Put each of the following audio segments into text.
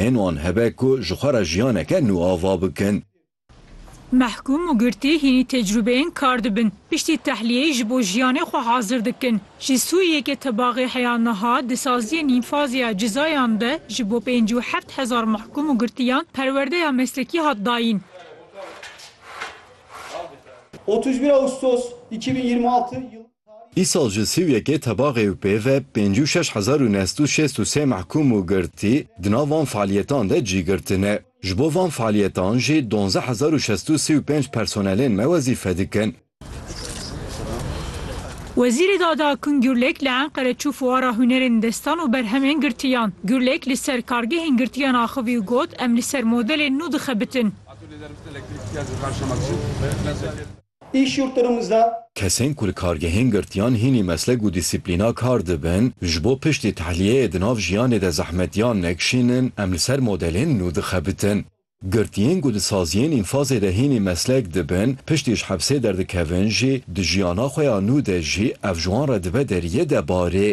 hên wan hebe ku ji xwe re jiyaneke nû ava bikin. Mehkûm û girtî hînî tecrûbeyên kar dibin, piştî tehliyeyê ji bo jiyanê xwe hazir dikin. Ji Sûriyeyeke tebaxê heya niha di saziyên înfazê ya cizayan de ji bo pêncî û heft hezar mehkûm û girtiyan perwerdeya meslekî hat dayîn. Otuz bir Ağustos iki bin yirmi altı yılı. Îsal ji sî û yekê tebaxê û pê ve pêncî û şeş hezar û neh sed û şêst û sê mehkûm û girtî di nav van fealiyetan de cî girtine. Ji bo van fealiyetan jî donzdeh hezar û şestu û sî û pênc personelên me wezîfe dikin. Wezîrê Dade Akun Gurlek li Enqere çû fuara hunerên destan û berhemên girtiyan. Gurlek li ser kargehên girtiyan axivî û got, Em li ser modelên nû dixebitin. Îş yurtdurumuzda. Kesên ku li kargehên girtiyan hînî meslek û dîsîplîna kar dibin, ji bo piştî tehliyeyê di nav jiyanê de zehmetiyan nekişînin, em li ser modelên nû dixebitin. Girtiyên ku di saziyên înfazê de hînî meslek dibin, piştî ji hepsê derdikevin jî, di jiyana xwe ya nû de jî ev ji wan re dibe deriyê de barê.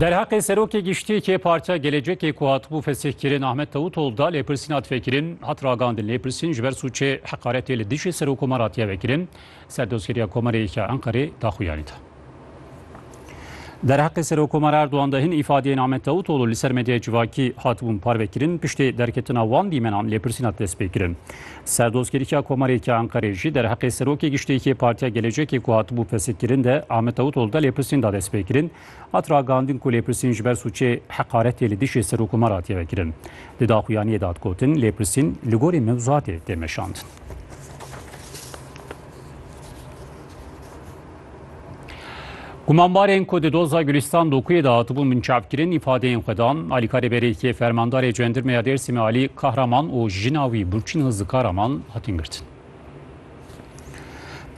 Derheqê serokê giştiyekê Partiya Gelecekê ku hatibû fesihkirin Ahmet Tewutol da lêpirsîna tfekirin hat ragandin. Lêpirsîn ji ber sûçê heqaretê li dijî serokomaratiye vekirin, serdozgeriya Komarê ya Enqerê daxuyanî da. Derheqê Serokomara Erdogan de hin îfadeyên Ahmet Davutoglu li ser medyaya civakî hatibûn parvekirin, piştê derketina wan dîmenan lêpirsîn hat destpêkirin. Serdozkeriya Komareke Enqerê jî derheqê Serokê Giştîyekê Partiya Gelecekê ku hatibû fesikkirin de Ahmet Davutoglu de lêpirsîn da destpêkirin, hat ragihandin ku lêpirsîn ji ber sûcê heqaretê li dijî Serokomar hatiye vekirin. Di daxuyaniyê de hat gotin, lêpirsîn li gorî mewzuatê tê meşandin. Gumanbarên ku di doza Gulîstan Dokuyê de hatibûn binçavkirin îfadeyên xwe dan. Alîkarê Berêkê Fermandarê Cendirmeya Dêrsimê Alî Kahraman û jina wî Burçîn Hızlı Karaman hatin girtin.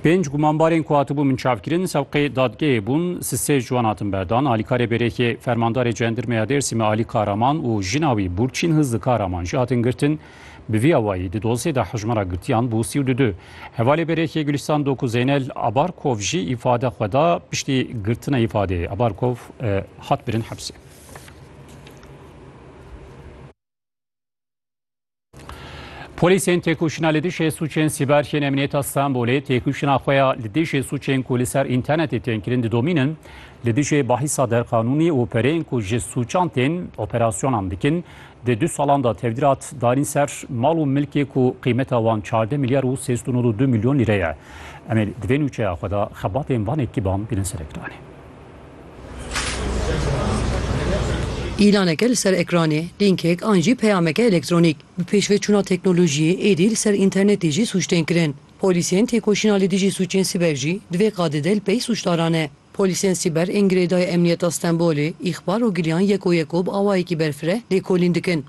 Pênc gumanbarên ku hatibûn binçavkirin sewqê dadgehê bûn, sisê ji wan hatin berdan. Alîkarê Berêkê Fermandarê Cendirmeya Dêrsimê Alî Kahraman û jina wî Burçîn Hızlı Karaman jî hatin girtin. Bi vî awayî di dosyê de hejmara girtiyan bû sî û du du. Hevalê Berêkê Gulîstan Doku Zeynel Abarkov jî îfade xwe da piştî girtina îfadeyê Abarkov hat birin hepsê. Polîsên têkoşîna li dijî sûçên sîber yên Emniyeta Stenbolê têkoşîna xwe ya li dijî sûçên ku li ser înternetê tên kirin didomînin li dijî bahîsa derqanûnî û pereyên ku ji sûçan tên operasyonan dikin Di du salan de tevdîr hat darîn ser mal û milkê ku qîmeta wan çardeh milyar û sê sed û nod û du milyon lîre ye. Em ê di vê nûçeya xwe de xebatên van ekîban bînin ser ekranê. Îlaneke li ser ekranê, lînkek an jî peyameke elektronîk, bi pêşveçûna teknolojiyê êdî li ser înternetê jî sûc tên kirin. Polîsên têkoşîna li dijî sûcên sîber jî divê qadê de li pey sûcdaran e. Polîsên sîber ên girêdayî Emniyeta Stenbolê îxbar û giliyan yeko yeko bi awayekî berfireh lêkolîn dikin.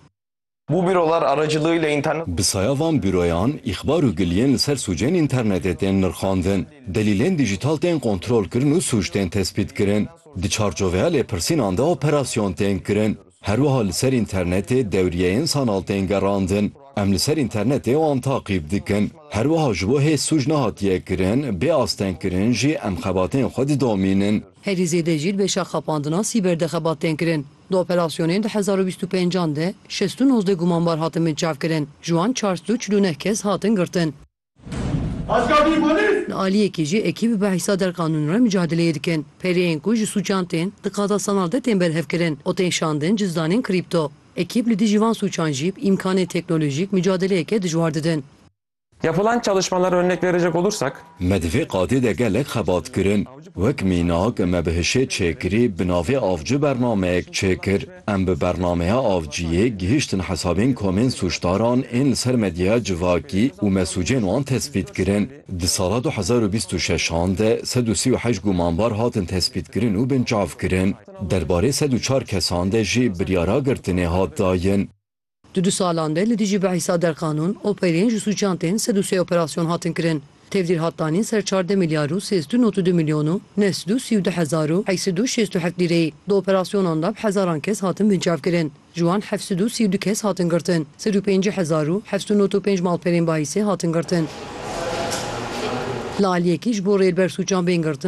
Bu bürolar aracılığıyla internet. Bi saya van büroyan îxbar û giliyên li ser sûcên înternetê tên nirxandin, delîlên dîjîtal tên kontrolkirin û sûc tên tespîtkirin. Di çarçoveya lêpirsînan de operasyon tên kirin. Herwiha li ser înternetê dewriyeyên sanal tên gerandin. Em li ser înternetê wan taqîb dikin. Herwiha ji bo hê sûc nehatiye kirin, bê astengkirin jî em xebatên xwe didomînin. Herî zêde jî li beşa xapandina sîber de xebat tên kirin. Di operasyonên du hezar û bîst û pênc an de şêst û nozdeh gumanbar hatin binçavkirin. Ji wan çar sed û çil û neh kes hatin girtin. Li aliyekê jî ekî bi behsa derqanûn re micadileyê dikin. Pereyên ku ji sûcan tên, di qada sanal de tên berhevkirin û tên şandin cizdanên krîpto. Ekîb li dijî van sûcan jî bi îmkanên teknolojîk micadileyeke dijwar didin. Yapılan çalışmalara örnek verecek olursak. Me di vê qadê de gelek xebat kirin. Wek mînak, me bi hişê çêkirî bi navê Avcı bernameyek çêkir. Em bi bernameya Avciyê gihiştin hesabên komên sûcdaran ên li ser medyaya civakî û me sûcên wan tespît kirin. Di sala du hezar û bîst û şeş an de sed û sî û heşt gumanbar hatin tespîtkirin û binçavkirin. Derbarê sed û çar kesan de jî biryara girtinê hat dayin. Di du salan de li dijî bi hîsa derqanûn, operên ji sûcan tên sed û sê operasyon hatin kirin. Tevdîr hat danîn ser çardeh milyar û sêzdû not û du milyon û neh sed û sî û du hezar û heşt sed û şêst û heft lîreyî. Di operasyonan de bi hezaran kes hatin binçavkirin. Ji wan heft sed û sî û du kes hatin girtin. Sed û pêncî hezar û heft sed û not û pênc malperên bahîsê hatin girtin. Li aliyekî ji bo rêlber sûcan bên girtin,